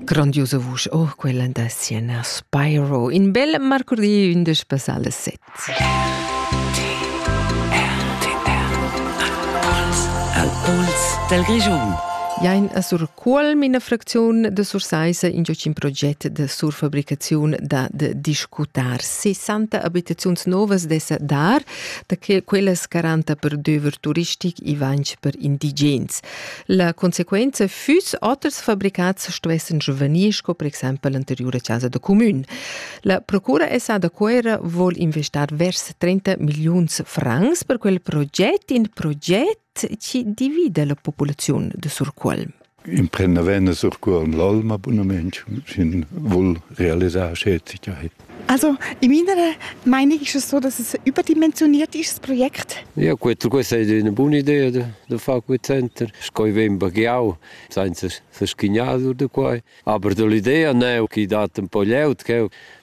Grandiosa vusch, oh, quella da Sienna Spyro, in bel marcurdi 11 passale 7. Al Puls del Region. Jain a sur Cuolm ina fracziun de Sursaisa in giocin proget de surfabricaziun da de discutar 60 abitaziuns novas dessa dar da quelles 40 per döver turistic e 20 per indigens. La consequenza füss oters fabricats stuessan giuvenir sco per exempel l'anteriura chasa da cumün. La procura SA da Cuera vuol investar vers 30 milliuns francs per quel proget, in proget chi divida la populaziun de Surcuolm. Imprenda venne Surcuolm l'alma bunament, sin vuol realisar schäzigkeit. Also, in meiner Meinung ist es so, dass es ein überdimensioniertes Projekt ist. Ja gut, questa è una buona idea da fare quel center. Scoi vem baghiau, senza se schignadur da quai. Aber dall'idea neu che dat un po' glieud,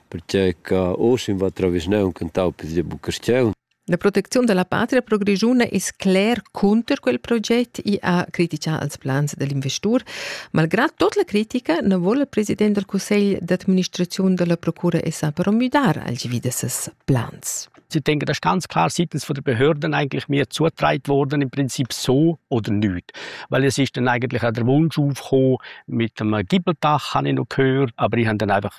perché che Osim va attraverso un cantau per il Bucarstiel. La protecziun dalla patria pro Grischuna es cler cunter quel proget, i ha critica als plans dell'investur. Malgrad tot la critica non vol il president del Cussegl d'administrazione della Procura SA però müdar alchevì de ses plans. Ich denke, das ist ganz klar seitens der Behörden eigentlich mehr zugetragen worden, im Prinzip so oder nicht. Weil es ist dann eigentlich auch der Wunsch aufgekommen, mit dem Gibbeltach habe ich noch gehört, aber ich habe dann einfach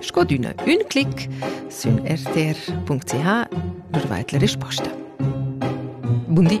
Sco d'üna ün clic sün rtr.ch lur vait la risposta. Bun di!